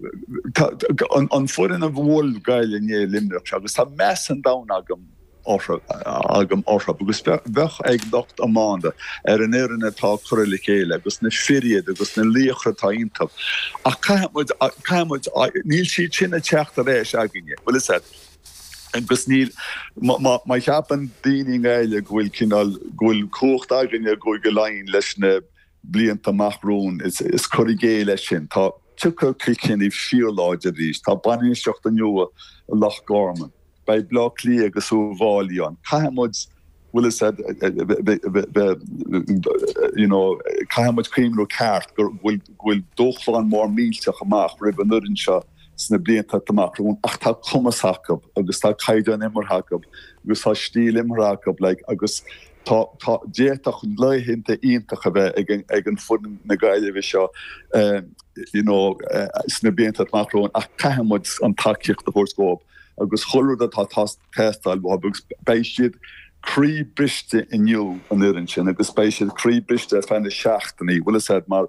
an foireann a bhuail Gaillimh inné i Luimneach agus tá meas an domhain agam agam orthu agus bheadh ag lucht iomána ar an fhoireann atá curtha le chéile agus na fir iad agus na laochra atá iontu ach caithfidh muid caithfidh muid níl siad sin ag teacht ar ais againne bhfuil fhios a'd agus níl má cheapann daoine i nGaillimh go bhfuil cineál go bhfuil cumhacht againne go go leanfaidh leis na blianta amach romhainn is cur i gcéill é sin. Tá Tiocfaidh Cill Chainnigh fíorláidir arís. Tá bainistíocht nua i Loch Gorman. Beidh Bleá Cliath agus Uibh Fháilí ann. Caithfidh muid bhfuil fhios a'd bheith you know caithfidh muid cuimhniú ceart go bhfuil go bhfuil dúshlán mór millteach amach roimh an fhoireann seo sna blianta amach romhainn ach tá cumas acu agus tá caighdeán imeartha acu agus tá stíl imeartha acu like agus Tá tá d'fhéadfadh laethanta iontach a bheith ag an ag an fhoireann na Gaillimhe seo you know sna blianta amach romhainn ach caithfidh muid an tacaíocht a thabhairt dhóibh agus chuile rud atá atá ag teastáil uathu agus beidh siad croí briste inniu an fhoireann sin agus beidh siad croí briste ar feadh na seachtainí bhfuil fhios a'd mar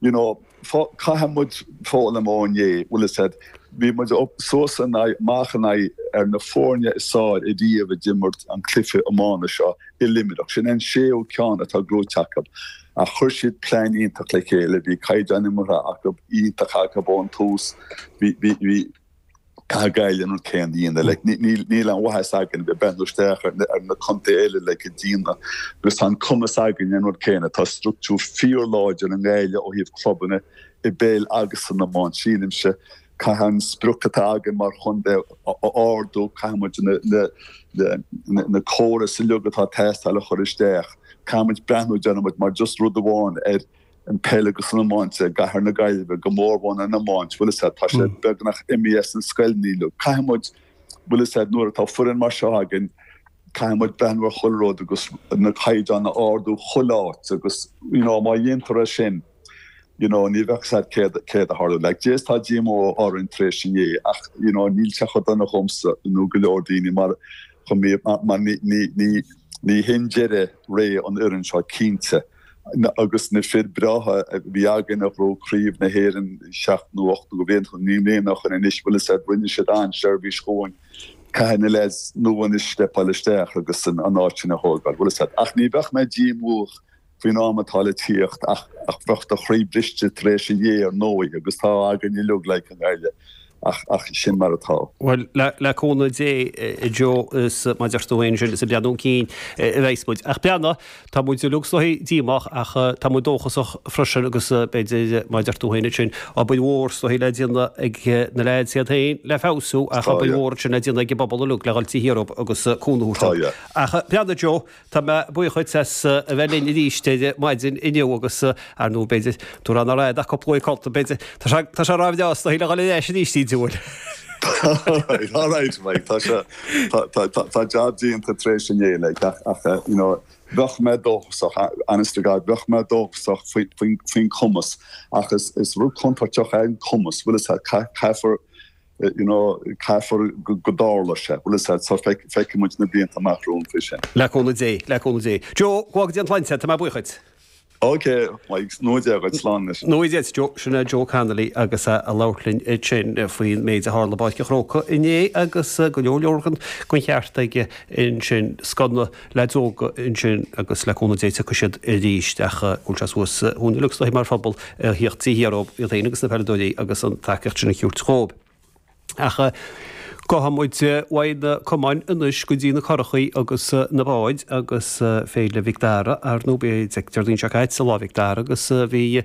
you know, fo, caithfidh muid foghlaim ó inné, bhfuil fhios a'd, bhí muid up, suas in aghaidh, amach in aghaidh ceann de na foirne is fearr ariamh a d'imirt an cluiche iomána seo i Luimneach, sin an séú ceann atá gnóite acu. Ach chuir siad plean iontach le chéile, bhí caighdeán imeartha acu iontach acu ón tús, bhí, bhí, bhí, Caithfidh Gaillimh an rud céanna a dhéanamh. Like níl níl aon mhaith dhúinn bheith breathnú isteach ar na ar na contae eile atá dhá dhéanamh agus tá an cumas againn an rud céanna. Tá struchtúr fíorláidir i nGaillimh ó thaobh clubanna i bpeil agus san iomáint. Sílimse caithfidh an sprioc atá againn mar chontae a ardú, caithfidh muid na na na na córais uilig atá ag teastáil a chur isteach. Caithfidh muid breathnú déarfaidh muid mar just rud amháin ar an peil agus an iomáint i gcathair na Gaillimhe, go mór-mhór an iomáint, bhfuil 'fhios a'd, tá sé beagnach imithe as an scoil uilig. Caithfidh muid, bhfuil 'fhios a'd, nuair atá foireann mar seo againn, caithfidh muid breathnú ar chuile rud agus na caighdeáin a ardú chuile áit agus, you know, má dhéantar é sin, you know, ní bheadh 'fhios a'd céard, céard a tharlódh. Like, yes tá díomá orainn tar éis inné ach, you know, níl sé chomh dona dhomsa nó go leor daoine mar, chomh, mar ní, ní, ní, ní, ní hin deireadh ré an fhoireann seo cinnte. Agus na fir breátha a bhí againn a ghnóthaigh Craobh na hÉireann seacht nó ocht nó go b'fhéidir naoi mbliana ó shin anois, bhfuil fhios a'd, rinne siad an-seirbhís dhúinn. Caithfidh na leaids nua anois steipeáil isteach agus an áit sin a thógáil, bhfuil fhios a'd. Ach ní bheadh mé díomách faoin am atá le tíocht ach bheadh do chroí briste tar éis inné ar ndóigh agus tá againn uilig, like i nGaillimh. ach sin mar atá. Bhuel, le cúnamh Dé, a Joe, is mar a deir tú fhéin ansin, is ag breathnú chun cinn a bheas muid. Ach beanna, tá muid uilig is dóichí díomách ach tá muid dóchasach freisin agus b'fhéidir, mar a deir tú fhéin ansin, obair mhór is dóichí le déanamh ag na leaids iad fhéin le feabhsú ach obair mhór ansin le déanamh ag an bpobal uilig le dhul taobh thiar dhóibh agus cúnamh a thabhairt dóibh. Ach beanna Joe. Tá mé buíoch dhuit as a bheith linn arís ar maidin inniu agus, ar ndóigh, b'fhéidir, dúr ann aréir ach cúpla uair codlata, b'fhéidir. Tá sé, tá sé rámhainn aos do thoigh le dhul ar ais arís, ní diabhal. Alright, alright, Mike, tá sé, tá, tá, tá, tá jab déanta tar éis inné uilig ach, ach, eh, you know, bheadh mé dóchasach, a, honest to God, bheadh mé dóchasach faoi, faoin, faoin cumas ach is, is rud contúirteach é an cumas, bhuel, is, ca, caithfear, you know, caithfear go dtarlóidh sé. Well, is that so, feicfidh muid na blianta amach romhainn sin. Le cúnamh Dé, le cúnamh Dé. Joe, go bhfága Dia an tsláinte, tá mé buíoch duit. OK, Meigs, go ngnóthaí Dia dhuit, slán leis. Go ngnóthaí Dia duit, Joe. Sin é Joe Connolly agus é ag labhairt linn ansin faoin méid a tharla i bPáirc an Chrócaigh inné agus go leor leor den cheart aige ansin. Scuaine. Lads óga ansin agus le cúnamh Dé tiocfaidh siad arís ach an bhfuil sé suas chugainn uilig is dóichí mar phobal a thiacht taobh thiar dhóibh, iad féin agus na peileadóirí agus an tacaíocht sin a thabhairt dhóibh. Ach gabhfaidh muid uaidh na camáin anois go dtí na curachaí agus na báid agus Féile Mhic Dara, ar ndóigh b'é Déardaoin seo caite Lá Mhic Dara agus bhí